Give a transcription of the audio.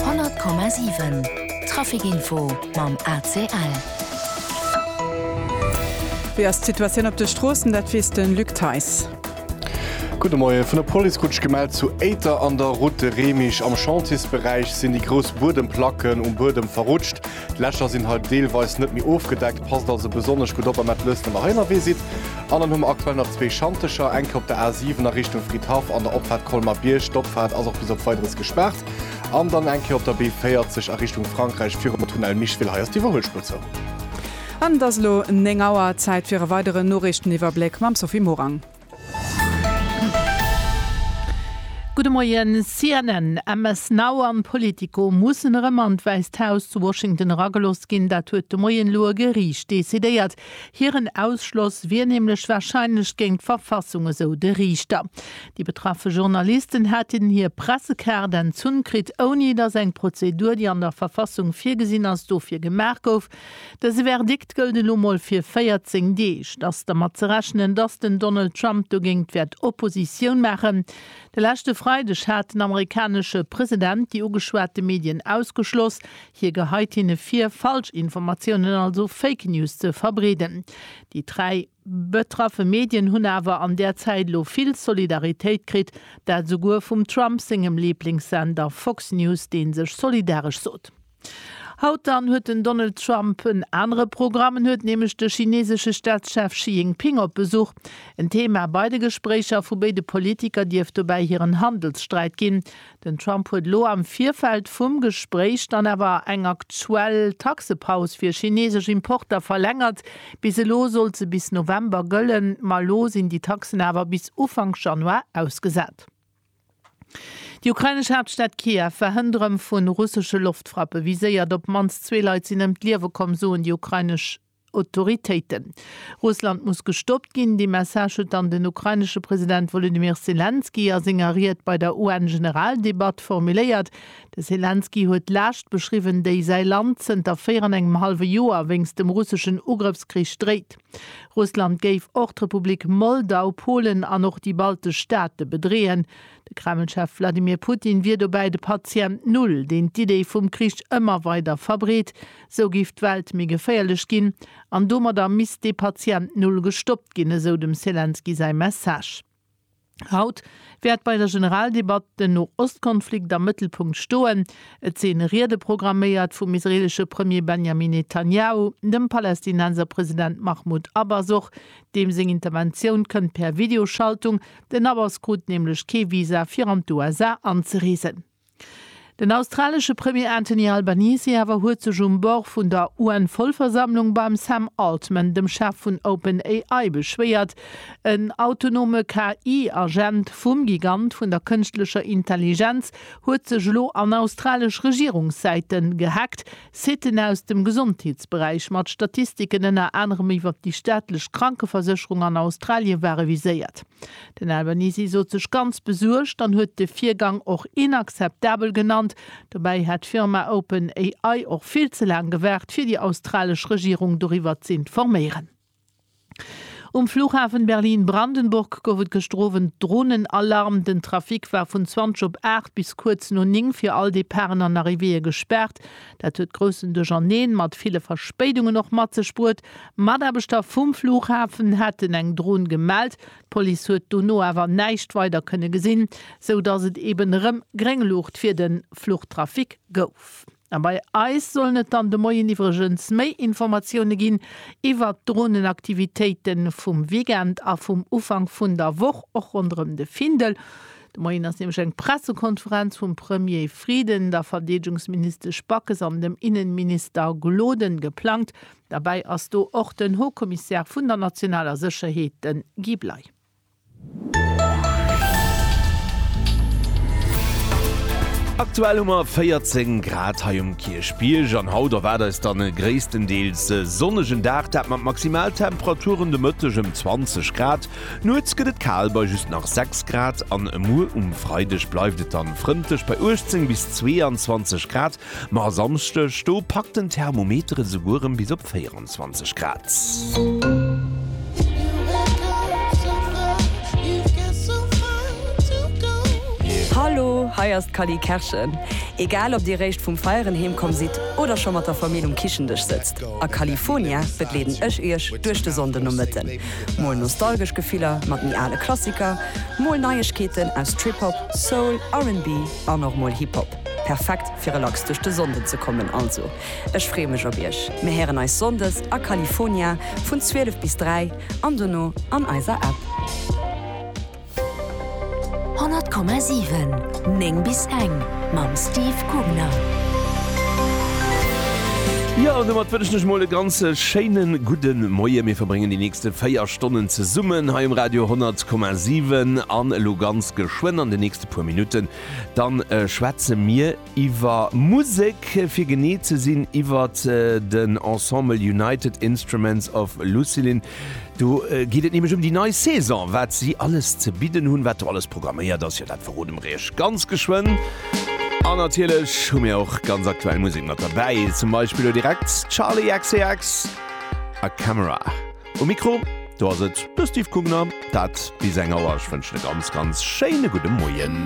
100,7 Trafic info mam ACL. Wéi ass d'Situatioun op de Stroossen, dat weess de Luc Theis. Gudde Moien. Vun der Police krut ech gemellt, zu Éiter an der Route de Remich am Chantiersberäich sinn déi grouss Buedemplacken um Buedem verrutscht. D'Lächer sinn hei deelweis net méi ofgedeckt, passt also besonnesch gutt op, amat lësst nëmme hei ënnerwee sidd. An dann hu mer aktuell nach zwee Schantecher, eng kéi op der A7 a Richtung Fridhaff an der Opfaart Colmer Bierg, d'Opfaart ass och bis op Weideres gespaart, an dann eng kéi op der B40 a Richtung Frankräich virum Tunnel Micheville, hei ass d'Iwwerhuelspuer zou. An et ass elo 9 Auer, Zäit fir e weideren Noriichteniwwerbléck mam Sophie Morang. Gudde Moien. CNN, MS Now an Politico mussen erëm an d'Wäisst Haus zu Washington eragelooss ginn. Dat huet de Moien elo e Geriicht decidéiert. Hiren Ausschloss wier nämlech warscheinlech géint d'Verfassung, esou de Riichter. Déi betraffe Journalisten hätten hir Pressekaart entzunn kritt, ouni datt eng Prozedur, déi an der Verfassung virgesinn ass, dofir gemaach gouf. Dëse Verdikt gëllt elo mol fir 14 Deeg. Et ass dermat ze rechnen, dass den Donald Trump dogéingt wäert Oppositioun maachen. De leschte Freideg hat den amerikanesche President déi ugeschwate Medien ausgeschloss. Hie geheit hinne vir, Falschinformatiounen, also Fake News, ze verbreeden. Déi dräi betraffe Medien hunn awer an där Zäit elo vill Solidaritéit kritt, dat esouguer vum Trump sengem Liblingssender Fox News, dee sech solidaresch sot. Haut dann huet den Donald Trump en anere Programm. En huet nämlech de chinesesche Staatschef Xi Jinping op Besuch. En Thema bei de Gespréicher vu béide Politiker dierft dobäi hiren Handelssträit ginn. Den Trump huet elo am Virfeld vum Gespréich dann awer eng aktuell Taxepaus fir chinesesch Importer verlängert. Bis elo sollt se bis November gëllen, ma elo sinn déi Taxen awer bis Ufank Januar ausgesat. Déi ukrainesch Haaptstad Kiew war hënt erëm vu russesche Loftfrappe viséiert. Op d'mannst zwee Leit sinn ëm d'Liewe komm, soen déi ukrainesch Autoritéiten. Russland muss gestoppt ginn. Dee Message huet dann den ukrainesche President Wolodymyr Selenskyj a senger Ried bei der UN-Generaldebatt formuléiert. De Selenskyj huet d'Laascht beschriwwen, déi säi Land zënter véier an engem hallwe Joer wéinst dem russeschen Ugrëffskrich dréit. Russland géif och d'Republik Moldau, Polen an och déi baltesch Staate bedreeën. De Kreml-Chef Wladimir Putin wier dobäi de Patient Null, deen d'Idee vum Krich ëmmer weider verbreet. Sou géif d'Welt méi geféierlech ginn an domadder misst dee Patient Null gestoppt ginn, esou dem Selenskyj säi Message. Haut wäert bei der Generaldebatt den No-Ost-Konflikt am Mëttelpunkt stoen. Et sinn Riede programméiert vum israeelesche Premier Benjamin Netanjahu, dem Palästinenser President Mahmoud Abbas och, deem seng Interventioun kënnt per Videoschaltung. Den Abbas krut nämlech kee Visa fir an d'USA anzereesen. Den australesche Premier Anthony Albanese awer huet sech um Bord vun der UN-Vollversammlung beim Sam Altman, dem Chef vun OpenAI, beschwéiert. En autonome KI-Agent vum Gigant vun der kënschtlecher Intelligenz huet sech elo an australesch Regierungssäite gehaackt. Siten aus dem Gesondheetsberäich mat Statistiken ënner anerem iwwer déi staatlech Krankeversécherung an Australien ware viséiert. Den Albanese sot sech ganz besuergt an huet de Virgang och inakzeptabel genannt. Dobäi hätt d'Firma OpenAI och vill ze laang gewaart, fir déi australesch Regierung doriwwer z'informéieren. Um Flughafen Berlin-Brandenburg gouf et gëschter Owend Dronenalarm. Den Trafic war vun 20 op 8 bis kuerz no 9 fir all Departen an Arrivéeë gespaart. Dat huet groussen Duercherneen mat ville Verspéidungen och mat sech bruet. Mataarbechter vum Flughafen haten eng Dron gemellt. D'Police huet dono awer näischt weider kënne gesinn, sou dass et eben erëm gréng Luucht fir de Fluchtrafic gouf. A bei eis sollen et dann de Moien iwwregens méi Informatioune ginn iwwert d'Dronenaktivitéite vum Weekend a vum Ufank vun der Woch, och ronderëm de Findel. De Moien ass nämlech eng Pressekonferenz vum Premier Frieden, der Verdeedegungsministesch Backes an dem Innenminister Gloden geplangt. Derbäi ass do och den Haut-Commissaire vun der nationaler Sécherheet, de Guy Bley. Aktuell hu mer 14 Grad hei um Kierchbierg an haut erwaart eis dann e gréisstendeels sonnegen Dag, dat mat Maximaltemperaturen de Mëtteg ëm 20 Grad. Nuets gëtt et kal bei just nach 6 Grad an muer um Freideg bleift et dann frëndlech bei 18 bis 22 Grad, ma Samschdeg do packt den Thermometer esouguer rem bis op 24. 28 Grad. Hallo, hei ass d'Cally Kerschen. Egal ob dir réischt vum Feieren heem komm sidd oder scho mat der Famill um Kichendësch sëtzt, a California begleeden ech iech duerch de Sonndenomëtten. Mol nostalgesch Gefiller mat méi ale Klassiker, mol Neiegkeeten aus Trip-Hop, Soul, RB an och mol Hip-Hop. Perfekt fir relax duerch de Sonnden ze kommen also. Ech free mech op iech. Mir héieren eis Sonndes a California vun 12 bis 3 an dono an eiser App. 100,7 9 bis eng mam Steve Kugner. Jo, an domat wënschen ech mol e ganz schéine gudde Moie. Mir verbréngen déi nächste 4 Stonnen zesummen hei um Radio 100,7 an elo ganz geschwënn an de nächste puer Minutten, da schwätze mir, iwwer Musek, fir genee ze sinn iwwert den Ensemble United Instruments of Lucilin. Do geet et nämlech ëm déi nei Saison, wat si alles ze bidden hunn, wat do alles programméiert ass. Jo, dat verrode mer iech ganz geschwënn. An natierlech hu mir och ganz aktuell Musek mat derbäi, zum Beispill elo direkt Charli XCX a Camera. Um Mikro do ass et de Steve Kugner. Dat bis eng Auer. Ech wënschen e ganz, ganz schéine gudde Moien.